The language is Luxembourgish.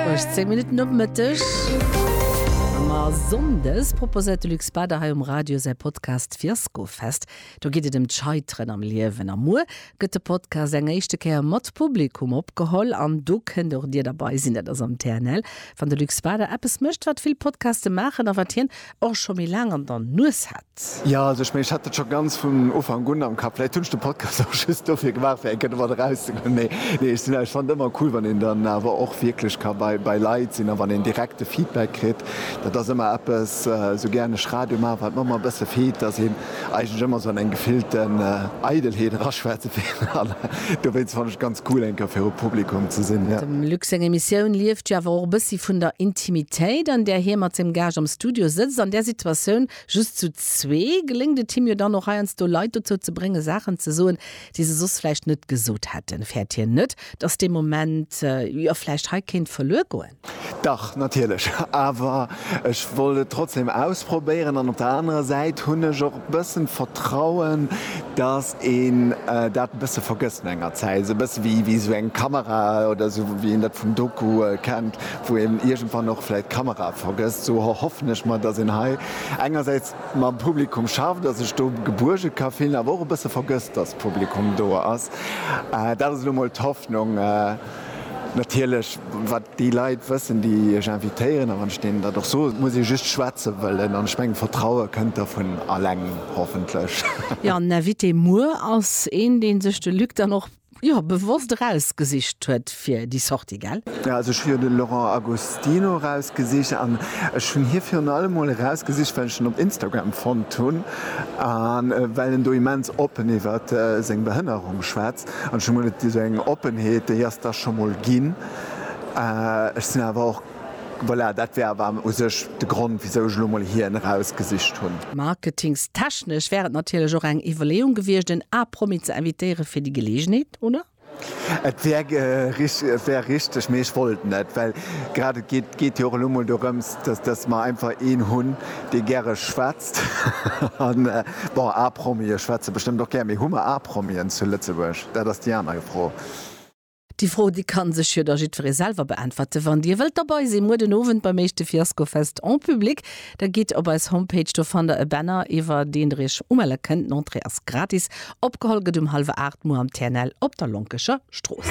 18 Minutten nom Mëtteg. Ëmmer Sonndes proposéiert de Luc Bader hei um Radio säi Podcast Fiaskofest. Do geet et ëm d'Scheiteren am Liewen. A muer gëtt de Podcast eng éischte Kéier mat Publikum opgeholl. An do kënnt och Dir derbei sinn. Dat ass am TNL, wann de Luc Bader eppes mécht, wat vill Podcaste maachen a wat hien och scho méi laang an der Nues hat. Jo, also ech mengen, ech hat et scho ganz vun Ufank un am Kapp. Vläicht hunn ech de Podcast och just dofir gemaach, fir eng Kéier domat erauszegoen. Mee nee, ech sinn ech fannen et ëmmer cool, wann een dann awer och wierklech ka bei, bei Leit sinn a wann een direkt de Feedback kritt. Dat ass ëmmer eppes, esou gären ech Radio maachen, wat mer ëmmer e bësse feelt, dass een eigentlech ëmmer esou an eng gefillten Eidelheet eraschwätzen, an dowéinst fannen ech et ganz cool eng Kéier viru Publikum ze sinn. Dem Luc seng Emissioun lieft jo awer och e bëssi vun der Intimitéit an där hie mat sengem Gaascht am Studio sëtzt. An där Situatioun just zu zwee geléngt et him jo dann och heiansdo Leit dozou ze bréngen Saachen ze soen, déi se soss vläicht net gesot hätten. Fäert hien net, datt dee Moment jo vläicht hei kéint verluer goen? Dach, natierlech, awer ech wollt et trotzdem ausprobéieren an op der anerer Säit hunn ech och e bëssen d'Vertrauen, dass een dat e bësse vergësst no enger Zäit, esou e bësse wéi esou eng Kamera oder esou wéi een dat vum Doku kennt, wou een iergendwann och vläicht d'Kamera vergësst. Esou erhoffen ech mer, dass een hei engersäits mam Publikum schafft, dass ech do gebuerge ka fillen, awer och e bësse vergësst, dass Publikum do ass. Dat ass elo mol d'Hoffnung. Natierlech, wat déi Leit wëssen, déi Iech invitéieren, a wann ech deenen dat och soen, et muss ee just schwätze wëllen, an ech mengen, d'Vertraue kënnt da vun alleng, hoffentlech. Jo, den Invité muer ass een, dee sech de Luc dann och, jo, bewosst erausgesicht huet fir déi Sortie, gell? Jo, also ech hu jo de Laurent Agostino erausgesicht, an ech hunn hie virun allem emol erausgesicht, well ech en op Instagram fonnt hunn, a well en do immens oppen iwwert seng Behënnerung schwätzt. An ech hu mol et esou eng Oppenheet, déi ass da scho mol ginn. Ech sinn awer och, voilà, dat war awer u sech de Grond, wisou ech elo mol hien erausgesicht hunn. Marketingstechnesch wär et natierlech och eng Iwwerleeung gewiescht, en A-Promi ze invitéiere fir déi Geleegenheet, oder? Et wär richteg, mee ech wollt net. Well grad et geet jo och elo mol dorëms, dass mer einfach een hunn, dee gäre schwätzt. Bon, A-Promie schwätze bestëmmt och gär, mee hu mer A-Promien zu Lëtzebuerg? Dat ass déi aner Fro. Déi Fro, déi ka sech jo da jiddweree selwer beäntwerte. Wann Dir wëllt derbei sinn, muer den Owend beim éischte Fiascofest en public, da gitt op eis Homepage, do fannt der e Banner, iwwer deen der Iech umelle kënnt. D'Entrée ass gratis. Opgeholl gëtt um hallwer 8 muer am TNL op der Lonkecher Strooss.